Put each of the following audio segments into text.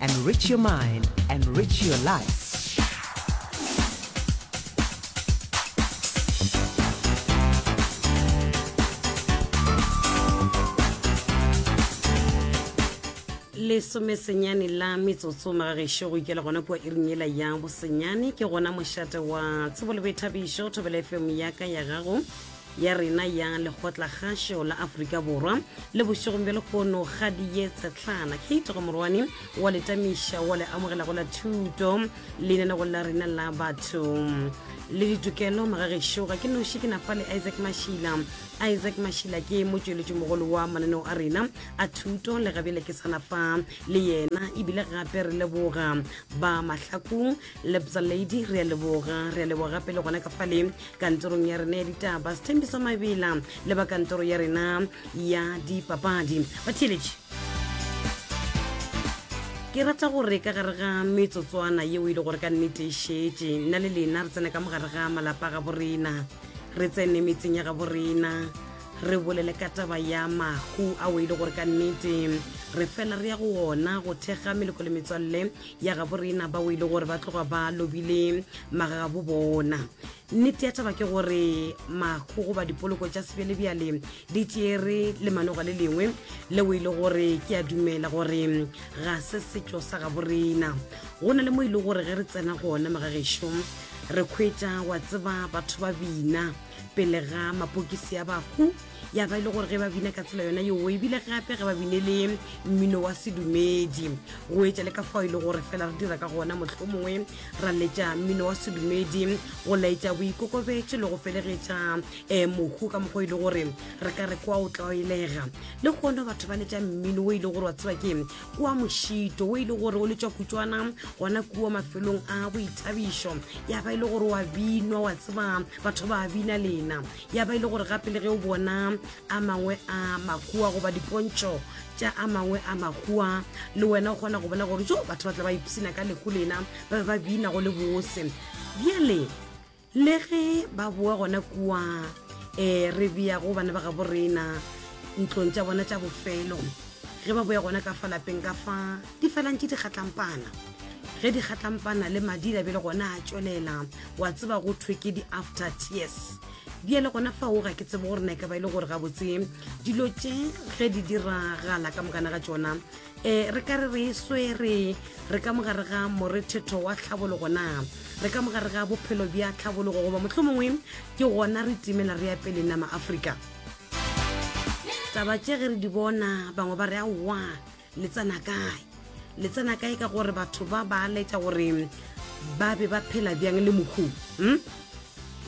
Enrich your mind, enrich your life. lesome senyane la metsotso magagešo go ikela gona kua iring ela ya bosenyane ke gona mošate wa tsebo le boithabišo thobela fm yaka ya gago ya rena ya lekgotlakgašo la aforika borwa le bošegong bja lekgono ga diye tshetlana kate gomorwane wa letamiša wa le amogelago la thuto lenanegong la rena la batho le ditokelo magagešo ga ke noši ke nafa le isaac mašila isaac mašila ke motšweletši mogolo wa mananeo a rena a thuto le gabjale ke sanafa le yena ebile gape re leboga ba mahlakong lebza lady re a leboga re a leboga gape le gona ka fale kantorong ya rena ya ditaba sethembiso mabela le ba kantoro ya rena ya dipapadi batheeletši ke rata gore ka gare ga metsotswana yeo e le gore ka nnete e šetše nna le lena re tsena ka mogare ga malapa ga borena re tsene metseng ya ga borena re bolele ka taba ya mahu ao e le gore ka nnete re fela re ya go ona go thekga meleko le metswalle ya gabo rena bao e le gore ba tloga ba lobile magagabo bona nnete ya taba ke gore makgogo ba dipoloko tša sebjelebjale di tšere le manoga le lengwe leo e le gore ke a dumela gore ga se setšo sa gabo rena go na le mo e le gore ge re tsena gona magagešo re kgwetša wa tseba batho ba bina pele ga mapokisi a bahu ya ba e le gore ge ba bina ka tsela yona yeo ebile gape ge ba bine le mmino wa sedumedi go etša le ka fao e le gore fela re dira ka gona motlho mongwe ra letša mmino wa sedumedi go laetša boikokobetše le go felegetša um eh, mohu ka mokgwa e le gore re ka re kwa o tlaelega le gona batho ba letša mmino o e le gore wa tseba ke kua mošito o e le gore o letšwa kutswana gona kua mafelong a boithabišo ya ba e le gore wa binwa wa tseba batho ba bina lena ya ba e le gore gape le ge o bona a mangwe a makua goba dipontšo tša a mangwe a makua le wena o kgona go bona gore jo batho ba tla ba ipsina ka lehu lena ba be ba bina go le bose bjale le ge ba boa gona kua um re bea go bana ba gabo rena ntlong tša bona tša bofelo ge ba boya gona ka fa lapeng ka fa di felang ke dikgatlampana ge dikgatlampana le madi la be le gona a tšwelela wa tseba go thwe ke di-after tears di ele gona fa o ga ke tsebe gore na ka ba e le gore gabotse dilo tše ge di diragala ka mokana ga tsona um re ka re re e swere re ka mogare ga morethetho wa tlhabologo na re ka mogare ga bophelo bja tlhabologo goba motlho mongwe ke gona re timela re ya pele nama aforika taba tše ge re di bona bangwe ba re aowa le tsena kae le tsena kae ka gore batho ba ba letša gore ba be ba phela bjang le mokgong hmm?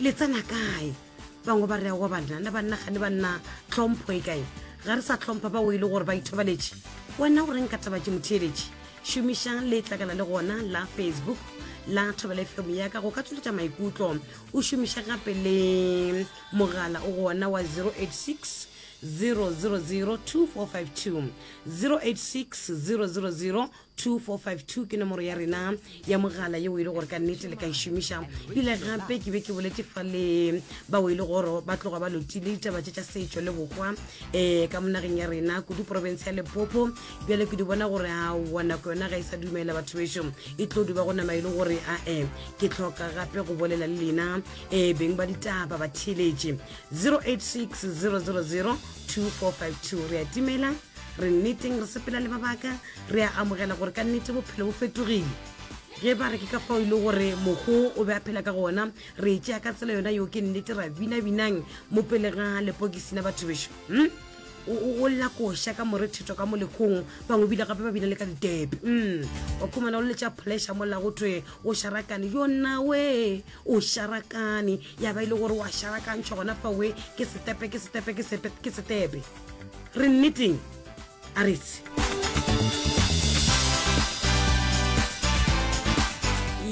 le tsena kae bangwe ba re awa banna le banna ga le banna tlhompho e kae ga re sa tlhompha bao e le gore ba ithobaletše wena o reng ka taba ke motheeletše šomišang le tlakala le gona la facebook la thobela fm ya ka go ka tsoletša maikutlo o šomiša gape le mogala o gona wa 086 0802452 086 ke nomoro ya rena ya mogala yeo e le gore ka nnete le ka e šomiša ile gape ke be ke boletse fa le bao e le goro ba tloga ba lotile ditaba tše tša setšo le bokwa um eh, ka monageng ya rena kudu porofense ya lepopo bjale ke di bona gore a wa nako yona ga e sa dumela batho bešo e tlo duba go nama e le gore ae ke tlhoka gape go bolela le lena um beng ba ditaba ba theletše 086 000 2452 re a timela re nneteng re sepela le mabaka re a amogela gore ka nnete bophelo bo fetogile ge ba re ke ka fao e le gore mogo o be a phela ka gona re tšea ka tsela yona yo ke nnete ra binabinang mo pele ga lepokisi la batho bešo hmm? o lla koša ka morethetho ka mo lekgong bangwe bile gape ba bina le ka ditepe hmm. o khumana o letša pleasure mola go thwe o sharakane yonawe O šarakane, ya ba e le gore o a šarakantšhwa gona fawe ke setepe, ke setepe, ke sepe, ke setepe. Re nneteng, a re se.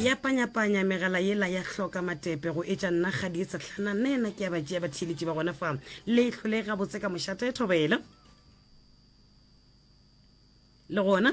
ya panyapanya megala yela ya hloka matepe go etša nna ga di setlhana nna yena ke ya ba tšea batheeletši ba gona fa le hlole gabotse ka mošate thobela le gona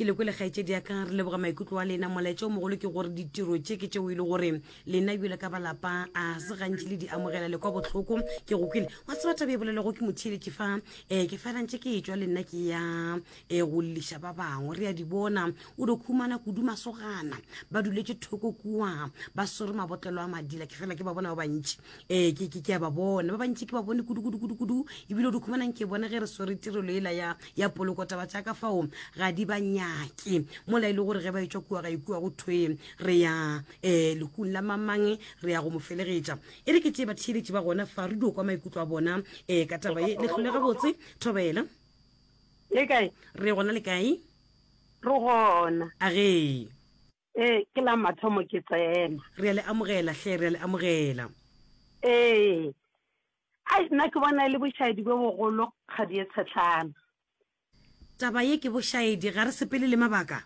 Ke le kwele kgaetšedi ya ka, re leboga maikutlo a lena. Molaetša o mogolo ke gore ditiro tše ke tšeo e le gore lena bjalo ka balapa a se gantši le di amogela le kwa bohloko. Ke go kwele wa tseba taba e bolelwago ke motheeletši fa, um ke fela ntše ke e tšwa le nna ke ya um go lliša ba bangwe. Re a di bona o di khumana kudu masogana ba duletše thoko kua ba swere mabotlelo a madila, ke fela ke ba bona ba bantši ee ke ke ke a ba bona ba bantši ke ba bone kudu kudu kudu kudu ebile o di khumanang ke bona ge re swere tirelo ela ya ya poloko taba tša ka fao ga di ba nyake mola e le gore ge ba etswa kua ga ikua go thwe re ya um lekung la mamang re ya go mo felegetša e re ke tee batheeletši ba gona fa re dio kwa maikutlo a bona um ka taba e letlhole gabotse thobela le kae re gona le kae re gona a gee Ee, ke la mathomo ke tsena. Re a le amogela, hle, re a le amogela. Ee. Ai, nna ke bona e le bošaedi bjo bogolo, Kgadi ye Tshetlana. Taba ye ke bošaedi, ga re sepele le mabaka.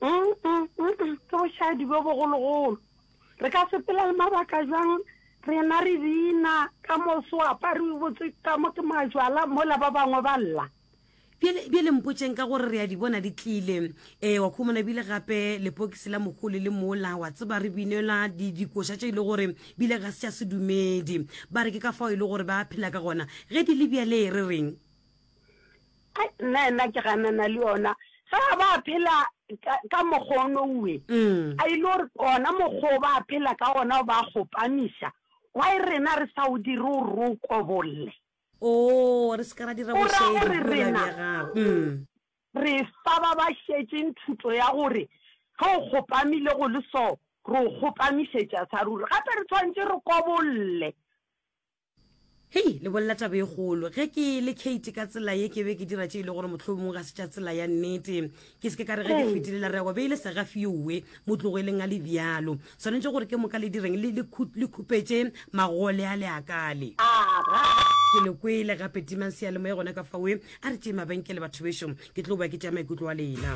Mm-mm-mm, ke bošaedi bjo bogologolo. Re ka sepela le mabaka bjang, rena re bina, ka moso o apariwe botse, ka mo ke majwala, mola ba bangwe ba lla? Bjale, bjale mpotšeng ka gore re a di bona di tlile. Ee, wa khomona bile gape lepokisi la mokgole le mola, wa tseba, re binelwa di, dikoša tše e le gore bile ga se tša sedumedi. Ba re ke ka fao e le gore ba phela ka gona. Ge di le bjale, re reng? Ai, nna, nna ke ganana le yona. Ge ba phela ka, ka mokgwa ono uwe, a e le gore ona mokgwa o ba phela ka ona o ba kgopamiša, why rena re sa o dire o re o kobolle? Oo, re se ke ra dira O ra bošedi gore bjola bja rena gago. re fa ba ba šetšeng thuto ya gore ge o kgopamile go le so, re o kgopamišetša sa ruri. Gape re tshwanetše re kobolle. Hei, le bolela taba e kgolo. Ge ke le Kate ka tsela ye ke be ke dira tše e le gore mohlomongwe ga se tša tsela ya nnete. ke se ke ka re ge ke fetile la rego be e le segafiowe motlogweleng a le bjalo swanetše gore ke moka le direng le le khu- le khupetše magole a le akale ke le kwele gape timang seyalemoya gona ka fawe a re tšee mabenkele batho bešo ke tlo boa ke tšea maikutlo a lena